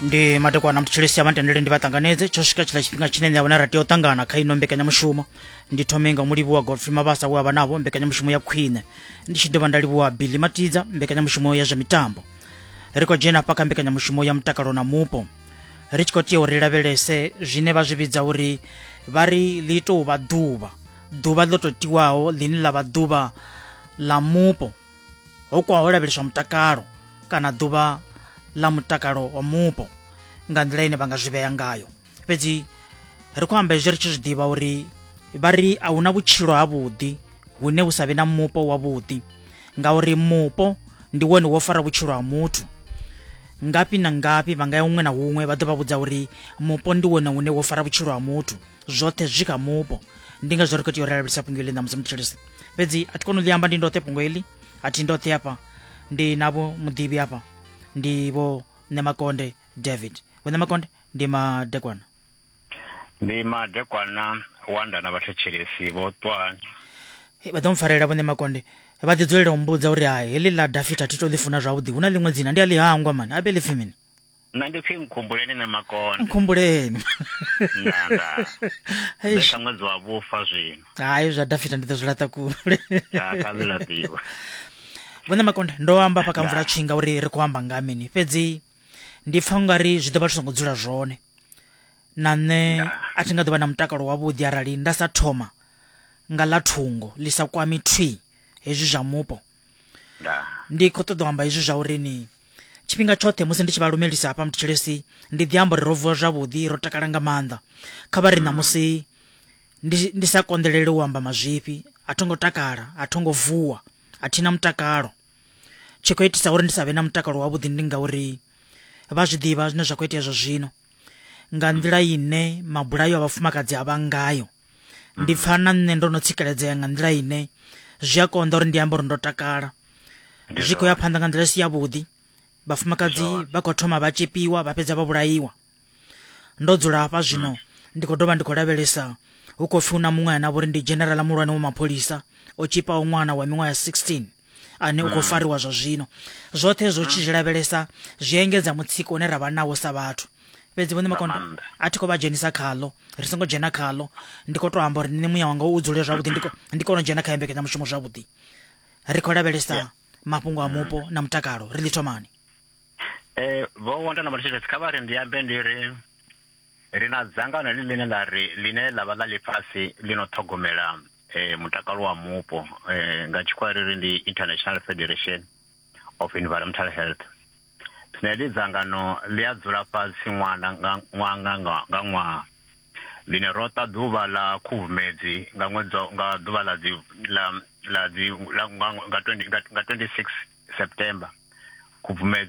ndi madekwana mthetshelesi abantu ndile ndi vhaṱanganedze tsho swika tshila tshifhinga tshine nṋe vhona ra tea u ṱangana kha ino mbekanyamushumo ndi thome nga mulivhuwa godfrey mabasa we a vha navho mbekanyamushumo ya khwine ndi tshi dovha nda livhuwa billy matidza mbekanyamushumo ya zwa mitambo ri khou dzhena hafha kha mbekanyamushumo ya mutakalo na mupo ri tshi khou tea uri lavhelese zwine vha zwi vhidza uri vha ri ḽi tou vha ḓuvha ḓuvha ḽo tou tiwaho ḽine ḽa vha ḓuvha ḽa mupo ho kwaho lavheleswa mutakalo kana ḓuvha ḽa mutakalo wa mupo nga nḓila ine vha nga zwi vhea ngayo fhedzi ri khou amba hezwi ri tshi zwi ḓivha uri vha ri a hu na vhutshilo havhuḓi hune hu sa vhe na mupo wavhuḓi ngauri mupo ndi wone wo fara vhutshilo ha muthu ngafhi na ngafhi vha nga ya huṅwe na huṅwe vha ḓo vha vhudza uri mupo ndi wone une wo fara vhutshilo ha muthu zwoṱhe zwi kha mupo ndi ngazwo ri khou tea u lavhelesa fhungo ḽi ṋamusi mutshilisi fhedzi a thi koni u ḽi amba ndi ndoṱhe fhungo heḽi a thi ndoṱhe hafha ndi navho muḓivhi hafha ndi vho nemakonde david vho nemakonde ndi madekwana ndi madekwana wanda na vhathetshelesi vho twani vha ḓo mpfarela vhone makonde vha ḓi dzulela u mbudza uri ha heḽi ḽa dafita thi to ḽi funa zwavhuḓi hu na ḽiṅwe dzina ndi a ḽi hangwa mani abe ḽi pfi mini nna ndi pfi nkhumbuleni ne makonde nkhumbuleni nda nda Eish. beka ṅwedzi wa vhufa zwino hayi zwa dafita ndi ḓo zwi laṱa kule Ya, kha zwi laṱiwa vhone makonde ndo amba fha kamvula tshinga uri ri khou amba nga mini fhedzi ndi pfa ungari zwi ḓo vha zwi songo dzula zwone na nṋe a thi nga ḓo vha na mutakalo wavhuḓi arali nda sa thoma nga ḽa thungo ḽi sa kwami thwi hezwi zwa mupo ndi khou ṱoḓa u amba hezwi zwa uri ni tshifhinga tshoṱhe musi ndi tshi vha lumelisa hafha mutshilesi ndi ḓi amba uri ro vuwa zwavhuḓi ro takala nga maanḓa kha vha ri ṋamusi ndi sa konḓelele u amba mazwifhi a tho ngo takala a tho ngo vuwa a thina mutakalo tshi khou itisa uri ndi sa vhe na mutakalo wavhuḓi ndi ngauri vha zwi ḓivha zwine zwa khou itea zwa zwino nga nḓila ine mabulayo a vhafumakadzi a vha ngayo ndi pfa na nṋe ndo no tsikeledzea nga nḓila ine zwi a konḓa uri ndi amba uri ndo takala zwi khou ya phanḓa nga nḓila i si yavhuḓi vhafumakadzi vha khou thoma vha tshepiwa vha fhedza vha vhulaiwa ndo dzula hafha mm. zwino ndi khou dovha ndi khou lavhelesa hu khou pfi hu na muṅwe ana vhori ndi generala muhulwane wa mapholisa o tshipaho ṅwana wa miṅwaha ya 16 ane u khou mm. fariwa zwa zwino zwoṱhe zwo tshi mm. zwi lavhelesa zwi engedza mutsiko une ra vha nawo sa vhathu fhedzi vhone makondo a thi khou vha dzhenisa khaḽo ri songo dzhena khaḽo ndi khou tou amba uri nṋe muya wanga u dzule zwavhuḓi ndi kone u dzhena kha yembekanya mushumo zwavhuḓi ri khou lavhelesa mafhungo a mupo mm. na mutakalo ri ḽi thomani um vho wondana matshitshesi kha vha ri ndi ambe ndi ri ri na dzangano ḽi ḽine ḽa ri ḽine ḽa vha ḽa ḽifhasi ḽi no ṱhogomela eh, mutakalo wa mupo eh, nga tshikhuwa ri ri ndi international federation of environmental health zwine ḽi dzangano ḽi a dzula fhasi ṅwana nga ṅwaha nga nga- nga ṅwaha ḽine ro ta ḓuvha ḽa khubvumedzi nga ṅwedzi wa- nga ḓuvha ḽa dzi ḽa ḽa dzi ḽa nga nga 20 nga nga 26 september khubvumedzi